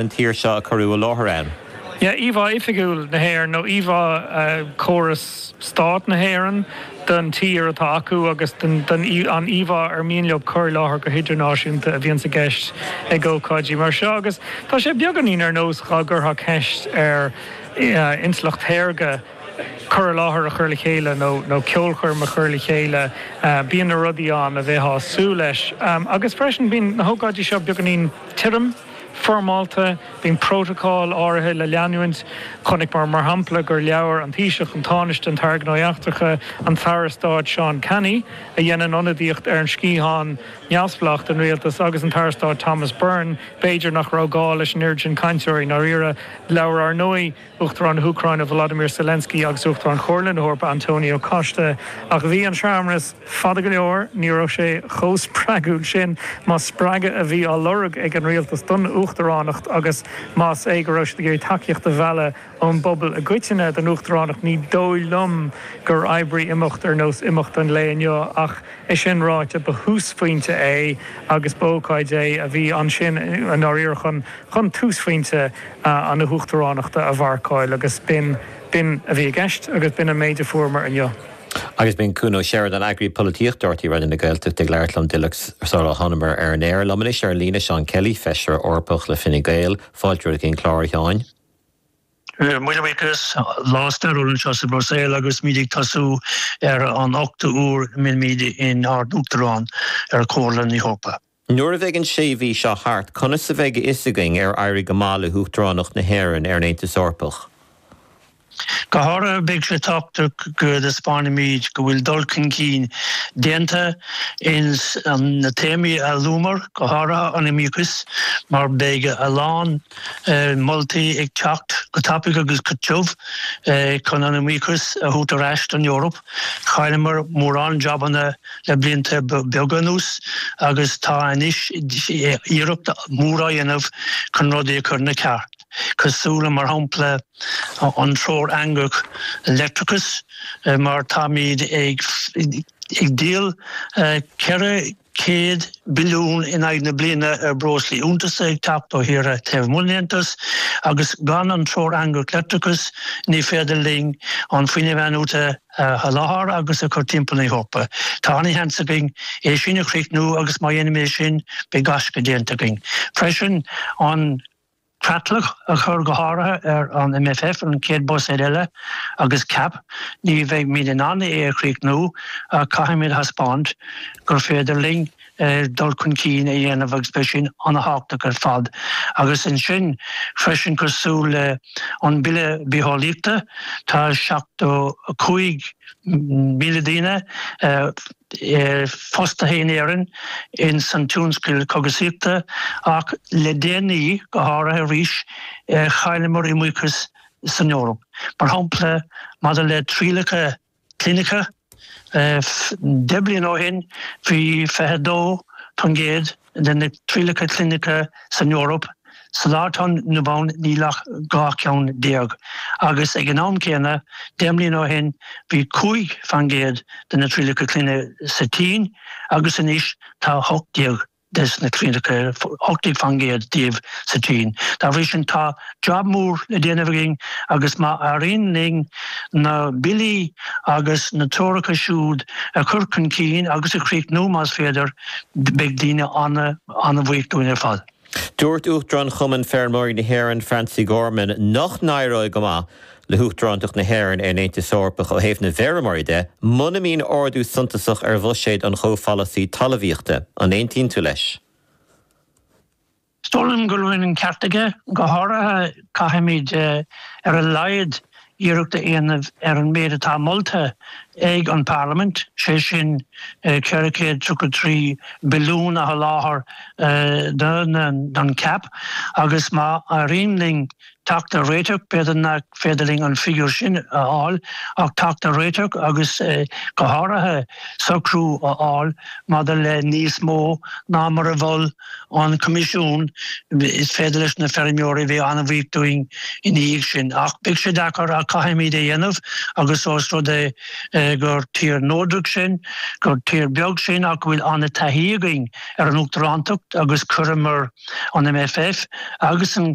den tír seo a cuireadh i láthair ann. íomhá oifigiúil na hÉireann nó íomhá chóras stáit na hÉireann den tír atá acu agus an íomhá ar mian leo a chur i láthair go hidirnáisiúnta a bhíonns i gceist ag ócáidí mar seo agus tá sé beagáinín ar nós dá gcuirfeá ceist ar intleacht shaorga cur i láthair a chur le chéile nó ceolchoirm a chur le chéile. Bíonn na rudaí ann a mbeifeá ag súil leis agus freisin bíonn na hócáidí seo beagáinín tirim. foirmeálta, bíonn prótacail áirithe le leanúint. Chonaiceamar, mar shampla, gur labhair an Taoiseach, an Tánaiste, an tAire Gnóthaí Eachtracha, an tAire Stáit Seán Canney, a dhéanann ionadaíocht ar an sciathán neamhspleách den rialtas, agus an tAire Stáit Thomas Byrne, b'fhéidir nach raibh gá leis an oiread sin cainteoirí i ndáiríre, labhair, ar ndóigh, Uachtarán na hÚcráine Volodymyr Zelensky agus Uachtarán Chomhairle na hEorpa Antonio Costa. Ach bhí an searmanas fada go leor, ní raibh sé chomh spreagúil sin más spreagadh a bhí á lorg ag an rialtas don uachtaránacht agus más é go raibh siad ag iarraidh tacaíocht a mhealladh ón bpobal i gcoitinne don uachtaránacht. Ní dóigh liom gur oibrigh imeacht ar nós imeacht an lae inniu ach É sin ráite, ba thúsphointe é agus b'ócáid é a bhí ansin i ndáiríre chun chun túsphointe na hUachtaránachta a mharcáil agus b'in b'in a bhí i gceist agus b'in an méid a fuaireamar inniu. Agus b'in Cuan Ó Seireadáin, Eagraí Polaitíochta Nuacht RTÉ Raidió na Gaeltachta ag labhairt liom díreach sular thánamar ar an aer, liom anois ar an líne, Seán Kelly, Feisire Eorpach le Fine Gael. Fáilte romhat chuig an gclár, a Sheáin. Míle buíochas lá stairiúil anseo sa Bhruiséil agus muid ag tosú ar an ochtú uair a mbeimíd inár n-uachtarán ar Chomhairle na hEorpa. Nuair a bheidh an sé mhí seo thart, conas a bheidh a fhios againn ar éirigh go maith le hUachtaránacht na hÉireann ar an Aontas Eorpach? Go háirithe beidh sé tábhachtach go dtaispeánaimid go bhfuil dul chun cinn déanta ins na téamaí a luamar, go háirithe an iomaíochas, mar beidh a lán moltaí ag teacht go tapaidh agus go tiubh chun an iomaíochas a thabhairt ar ais don Eoraip. Chailleamar mórán jabanna le blianta beaga anuas agus tá anois iarracht mhór á dhéanamh chun rudaí a chur ina cheart, cosúil le, mar shampla, an Treoir Eangach Leictreachais, mar táimid ag díol 4 100 billiún in aghaidh na bliana ar bhreoslaí iontaise ag teacht ó thíortha taobh amuigh den Aontas, agus gan an Treoir Eangach Leictreachais, ní féidir linn an fuinneamh in-athnuaite a sholáthar agus a chur timpeall na hEorpa. Tá an-sheans againn é sin a chríochnú agus má dhéanaimid é sin, beidh gaisce déanta againn. Freisin, an. creatlach a chur go háirithe ar an MFF, an chéad buiséad eile, agus CAP, ní bheidhmíd in ann é a chríochnú ach caithfimíd a thaispeáint gur féidir linn dul chun cinn a dhéanamh agus beidh sin ana-thábhachtach ar fad. Agus ansin freisin cosúil le an Bille Bitheolaíochta tá seachtó cúig míle daoine, fostaithe in Éirinn ins an tionscal cógaisíochta ach le déanaí, go háirithe arís, chailleamar iomaíochas san Eoraip. Mar shampla, maidir le trialacha cliniciúla, deich mbliana ó shin bhí 22% de na trialacha cliniciúla san Eoraip, sa lá atá inniu ann níl ach 12 ceann, agus ag an am céanna, 10 mbliana ó shin, bhí 5 faoin gcéad de na trialacha cliniciúla sa tSín, agus anois tá 18 de na trialacha, 18 faoin gcéad díobh sa tSín. Dá bhrí sin, tá. jab mór le déanamh againn agus má éiríonn linn na billí agus na treoracha siúd a chur chun cinn agus a chríochnú, más féidir, beidh daoine an-bhuíoch dúinn ar fad. Dúirt Uachtarán Chumann Feirmeoirí na hÉireann, Francie Gorman, nach n-éireoidh go maith le hUachtarántacht na hÉireann ar an Aontas Eorpach ó thaobh na bhfeirmeoirí de muna mbíonn ardú suntasach ar bhuiséad an chomhpholasaí talamhaíochta. An aontaíonn tú leis? Is dóigh liom go bhfuil an ceart aige. Go háirithe caithfimíd ar a laghad iarracht a dhéanamh ar an méid atá molta ag an bParlaimint, sé sin ceithre chéad tríocha trí billiún a sholáthar don CAP agus má éiríonn linn Teacht ar réiteach, B'fhéidir nach féidir linn an figiúr sin a fháil ach teacht ar réiteach agus go háirithe socrú a fháil maidir le níos mó ná mar a mhol an Coimisiún, is féidir leis na feirmeoirí bheith an-bhuíoch dúinn ina dhiaidh sin. Ach beidh sé deacair ach caithfimíd é dhéanamh agus ós rud é gur tír neodrach sinn, gur tír beag sinn ach go bhfuil an-taithí againn ar an Uachtarántacht agus chuireamar an MFF agus an